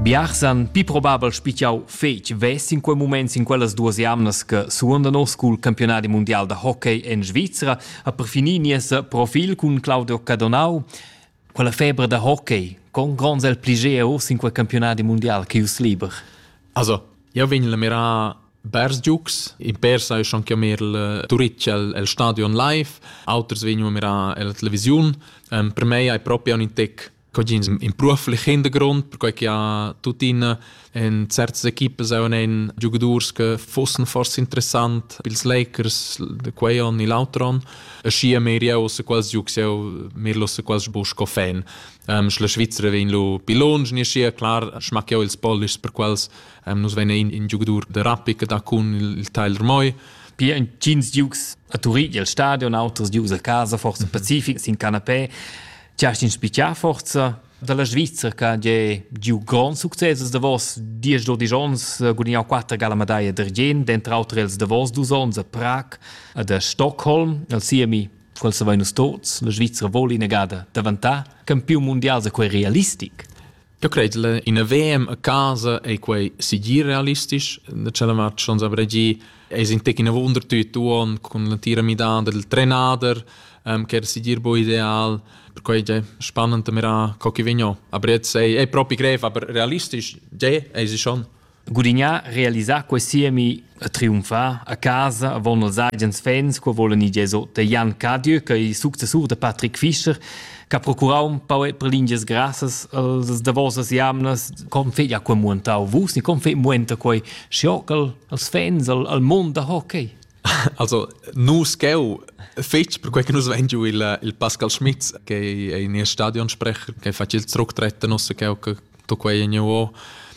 Biarsan pi probabel spichau fetg vess in quei moment in quellas duas jamnas che suonda nos cul campionadi mundial da hockey en Svizra a perfini nies profil cun Claudio Cadonau. Quella febra da hockey con gronds el pligea urs in quei campionadi mundial che us liber. Also, io vegn la mirar Bers Giux, in per sai schon chiamar il Turitg el stadion live, auters vegnu a mirar la televisiun. per me hai proprio un intec Cogins imprua flichend grond, perquai che ha tuttina en certas equipas auch einen Giocadors che fossen forse interessant pils Lakers de quei on e l'altro on. E schi a mir jau se quals giucs jau mir lo se quals bu sco fan. Um, la Svizzera vegn lo pi longe, ne schi clar schmack jau ils polish per quals um, nus vegn in, in giocador de Rappi che da cun il, il Tyler Moy. Pi entgins giucs a Turin il stadion, auters giucs a casa, forse mhm. Pacific sin canapé. Ti hast inspichà forza dalla Svizra che è giu grond success da vos diesch dodisch onns gudignau quatter gala medaglia d'argient, dentro auter els da vos dus onns a Prag ed a Stockholm, al siemi quel savein nus tots, la Svizra voli negada davantar campiun mundial se quei realistic. Eu cret la ina VM a casa ei quei sigir realistisch da tschella match ons aber gi es in tec ina wunder tüt uon cun la tira midada del trenader ähm, che era sigir bo ideal per quei ge spannend mira co chi vegno aber jetzt sei è propi grev aber realistisch ge es schon Gudignà realisà quei siemi e triumfar a casa avon els agens fans co volen i Gesot de Jan Cadieu che successur de Patrick Fischer che ha procurau un pau per lingias grassas als davosas jamnas com fe ja quei muentau vus ni com fe muenta quei schiocal als fans al, al mond da hockey Also, nus cheu fetg per quei che nus vein giu il, il Pascal Schmitz, che è in Stadionsprecher, che fa il zurücktreten aus cheu to quei niveau.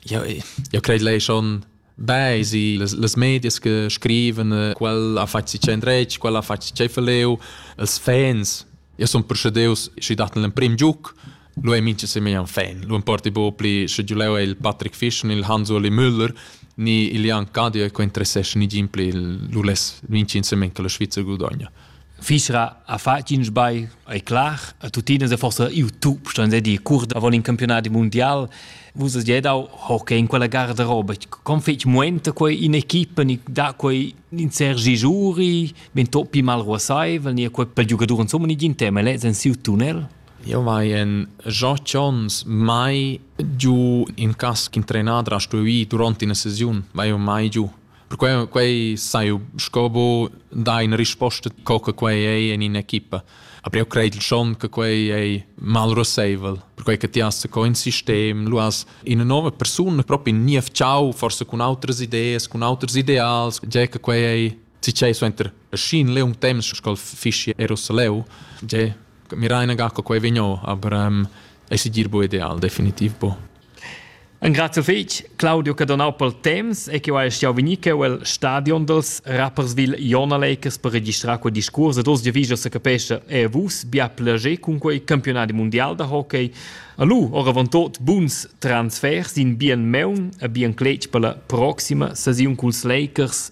Ja, ja credo lei schon bei sie les, les medias che scriven eh, quel ha fatg si centrec, quel ha fatg si cefaleu, els fans ja son procederus și dat l'emprim giuc Lu ei mintga semegn fan. Lu importi bu pli sche giu leu ei il Patrick Fisch ni il Hans Uli Müller ni il Jan Cadia che interessesce ni gin pli lu les vincin semen che la Svizzer gudogna. Fisra ha fatg in sbagl, è clar, a tutina se forse iu tu, ston se di cur da vol in campionati mondial, vus has già dau hockey in quella garderoba, con fetg muenta quei in equipa ni da quei in Sergi Giuri, ben toppi mal ruasaivel, ni quei per giocatori insomma ni gin tema, lez en siu tunnel? Jeu vai en otg onns mai giu in cas ch'in trenader ha stuì ir duront ina sesiun. Vai jeu mai giu. Perquei quei sai jeu sco bu dar ina risposta co che quei ei en in'equipa. Aber jeu credel schon che quei ei malruseivel, perquei che ti has co in sistem, lu has ina nova persuna proprio in niev ciao, forse cun autras ideas, cun auters ideals, tgei che quei ei Tgei suenter scin leung temps sco fischi Jerusalem, je miraina ga quei vigno, aber ähm, ei sigir bu ideal definitiv bu. Un grazie fetg Claudio che donau pel temps e che ha stau venir che el stadion dels Rapperswil Jona Lakers per registrar quel discurs ed oz giavija se capesce e vus bia plager cun quei campionati mondial da hockey. Allu oravontot buns transfers in bien meun e bien cletg per la proxima saziun culs Lakers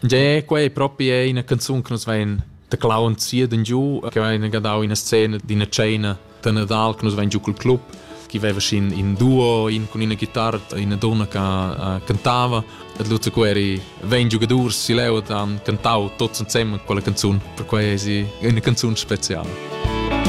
Tgè, quei propi è ina canzun che nos vein da clown zieden giu, che vein gadau ina scena d'ina cena da Nadal che nos vein giu col club, che veva sin in duo, in con ina chitarra, ina donna che uh, cantava. Et Lutz Queri vein giugadurs si leu han cantau tots insem quella canzun, per quei è ina canzun speciala.